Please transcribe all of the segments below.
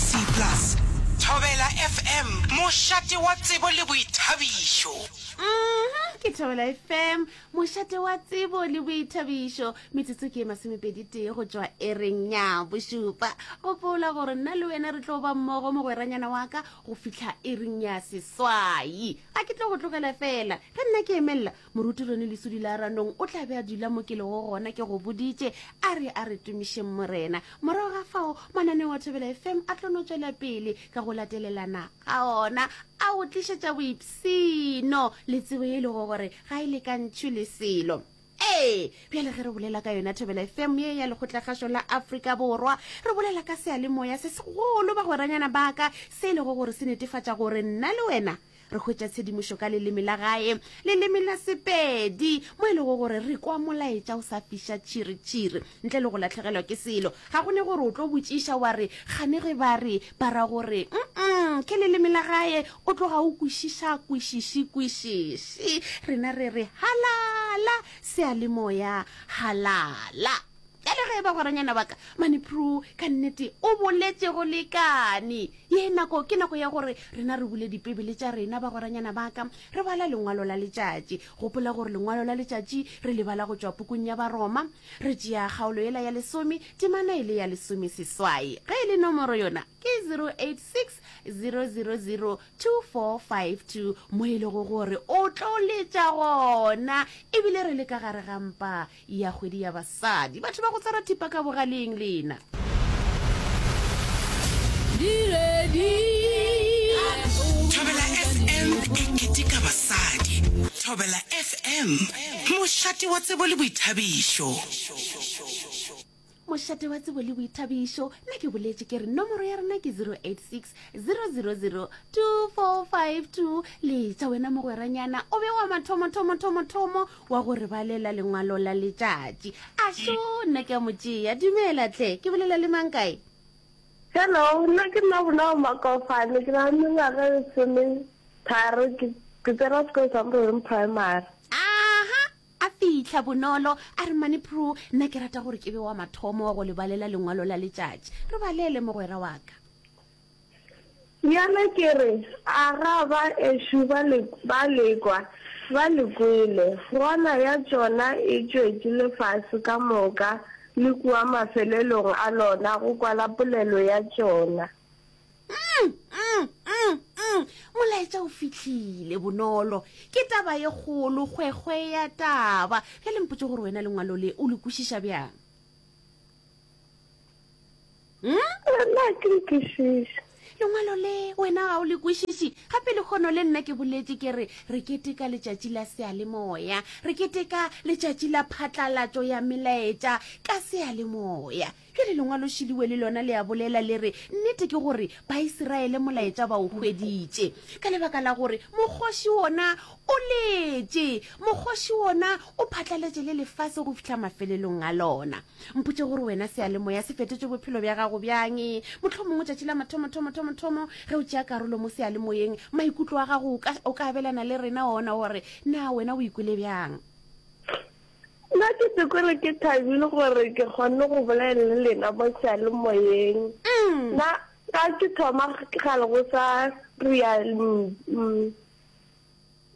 C plus. Thobela FM, mošate wa tsebo le boithabišo. Uhm, ke Thobela FM, mošate wa tsebo le boithabišo. Metsotso ke e masomepedi tee go tšwa ereng ya bošupa. Gopola gore nna le wena re tlo ba mmogo mogweranyana wa ka go fihla ereng ya seswai. Ga ke tlo go tlogela fela ge nna ke emelela moruti rone lesudi la ranong o tla be a dula mo ke lego gona ke go boditše a re a re tumišeng morena morago ga fao mananeo a thobela fm a tlono tswela pele ka go latelelana ga ona a go tlišetša boipsino le tsebo ye e lego gore ga e lekantšhwe le selo ee bjale ge re bolela ka yona thobela fm ye ya lekgotlakgašo la afrika borwa re bolela ka seyalemoya se segolo bagweranyana baka se e lego gore se netefatša gore nna le wena re hwetša tshedimošo ka leleme la gae leleme la sepedi mo e lego gore re kwa molaetša o sa fiša tšhiritšhiri ntle le go latlhegelwa ke selo ga go ne gore o tlo botšiša wa re gane ge ba re ba ra gore mm ke leleme la gae o tloga o kwešiša kwešiši kwešiši rena re re halala sealemoya halala Bjale ge e ba goranyana wa ka Manipru ka nnete o boletše go lekane. Ye nako ke nako ya gore rena re bule dipebele tša rena ba goranyana ba ka re bala lengwalo la letšatši. Gopola gore lengwalo la letšatši re le bala go tšwa pukung ya Baroma. Re tšea kgaolo yela ya lesome temana e le ya lesome seswai. Ge e le nomoro yona ke 0860002452 mo e lego gore o tlo letša gona ebile re le ka gare ga mpa ya kgwedi ya basadi batho ba go tshwara thipa ka bogaleng lena thobela fm e keteka basadi thobela fm mošate wa tsebo le boithabišo mošate wa tsebo le boithabišo nna ke boletše ke re nomoro ya rena ke 086 000 2452 letša wena mogweranyana o be wa mathomothomothomotomo wa go re balela lengwalo la letšatši a šo nna ke a mo tšea dumela tle ke bolela le mang kae hello nna ke nna bolao makofane ke na le mengwaga e lesometharo ke tsena sekolo sa mororeng primary aha A fihla bonolo, a re, Mmane Prue, nna ke rata gore ke be wa mathomo wa go le balela lengwalo la letšatši. Re balele, mogwera wa ka. Bjale ke re, A ga ba ešo ba le, ba le kwa? Ba le kwele. Gona ya tšona e tšwetše lefase ka moka le kua mafelelong a lona go kwala polelo ya tšona. Mm, mm, mm, mm. Molaetša o fihlile, Bonolo. Ke taba ye kgolo, kgwekgwe ya taba. Bjale mpotše gore wena lengwalo le o le kwešiša bjang? Mm? Nna ke le kwešiša. Lengwalo le wena ga o le kwešiši. Gape le kgono le nna ke boletše ke re re keteka letšatši la sealemoya. Re keteka letšatši la phatlalatšo ya melaetša ka sealemoya. Bjale Lengwalošiliwe le lona le a bolela, le re, Nnete ke gore Baisiraele molaetša ba o hweditše, ka lebaka la gore mokgoši wona o letše, mokgoši wona o phatlaletše le lefase go fihla mafelelong a lona. Mpotše gore wena seyalemoya se fetotše bophelo bja gago bjang. Mohlomongwe tšatši la mathomothomothomothhomo ge o tšea karolo mo seyalemoyeng, maikutlo a gago o ka, o ka abelana le rena ona gore na wena o ikwele bjang. Nna ke se kore ke thabile gore ke kgonne go bolela le lena mo seyalemoyeng. Nna ka ke thoma kgale go sa ria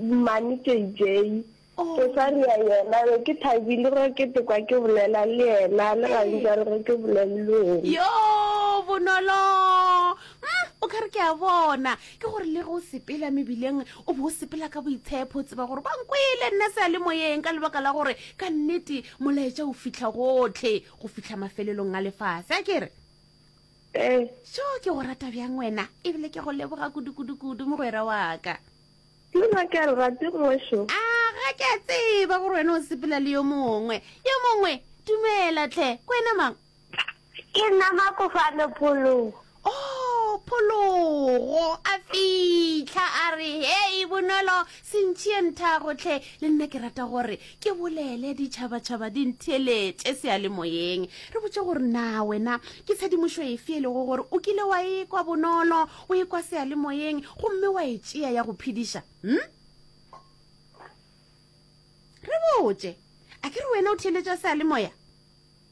mmane JJ, go sa ria yena be ke thabile ge ke tekwa ke bolela le yena le gane jalo ge ke bolela le wena. Yo bonolo o kare ke a bona ke gore le ge o sepela mebileng o be o sepela ka boitshepho o tseba gore ba nkwele nna se a le moyeng ka lebaka la gore ka nnete molaetša o fitlha gotlhe go fitlha mafelelong a lefase a kere ee so ke go rata bjang wena ebile ke go leboga kudu-kudu-kudu mogwera waka ke nna ke a le rate ngwešo a ga ke a tseba gore wena o sepela le yo mongwe yo mongwe dumela tlhe ko wena mang Ke nna Makofano Phologo. Oh, Phologo! A fihla a re, Hei, Bonolo, se ntšhiye nthago tlhe. Le nna ke rata gore ke bolele ditšhabatšhaba di ntheeletše seyalemoyeng. Re botše gore na wena ke tshedimošo efe e lego gore o kile wa e kwa bonolo, o e kwa seyalemoyeng gomme wa e tšea ya go phediša? Hm? Re botše. A ke re wena o theeletša seyalemoya?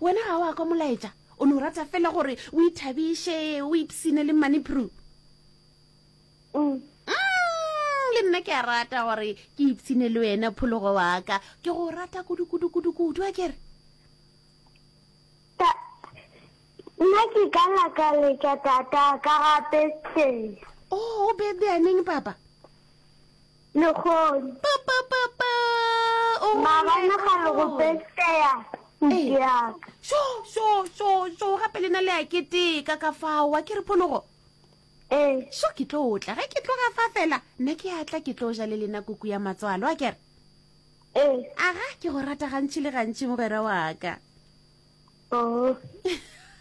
Wena ga wa kwa molaetša, o no rata fela gore o ithabiše, o ipsine le mmane Prue. Mm. Mm, le nna ke a rata gore ke ipsine le wena phologo wa ka. Ke go rata kudu-kudu-kudu-kudu, a kere? Ta, nna ke ka nyaka letša tata ka ga birthday. Oh, o birthday a neng, papa? Lehono. Pa pa pa pa. O Maabane ga le go peseya ntšeaka. Sho sho sho sho gape lena le a keteka ka fao wa ke re phonogo. Ee. Sho ke tlo tla ge ke tloga fa fela nna ke a tla ke tlo ja le lena kuku ya matswalo a kere. Ee. Aga ke go rata gantši le gantši mogwera wa ka. Oh.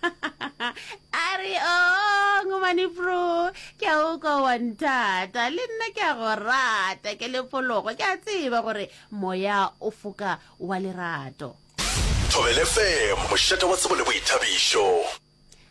a re o oh, ngomane pro ke a o kwa wa nthata le nna ke a go rata ke lepologo ke a tseba gore moya o foka wa lerato thobelefm mošate wa tsebo le boithabišo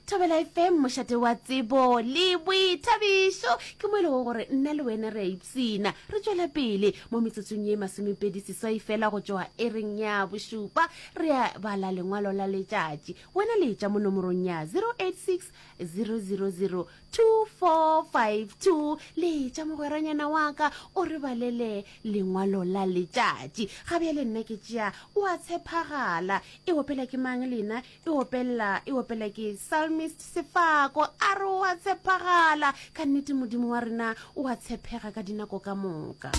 thobela fm mošate wa tsebo le boithabišo ke mo e lego gore nna le wena re a ipsina re tšwela pele mo metsotsong ye masomepedi seswai fela go tšwa e reng ya bošupa re a bala lengwalo la letšatši wena le tša mo nomorong ya 086 000 2452 le tša mogweranyana wa ka o re balele lengwalo la letšatši ga bjale nna ke tšea o a tshepagala e opela ke mang lena e opelela e opele ke psalmist sefako a re o a tshepagala ka nnete modimo wa rena o a tshepega ka dinako ka moka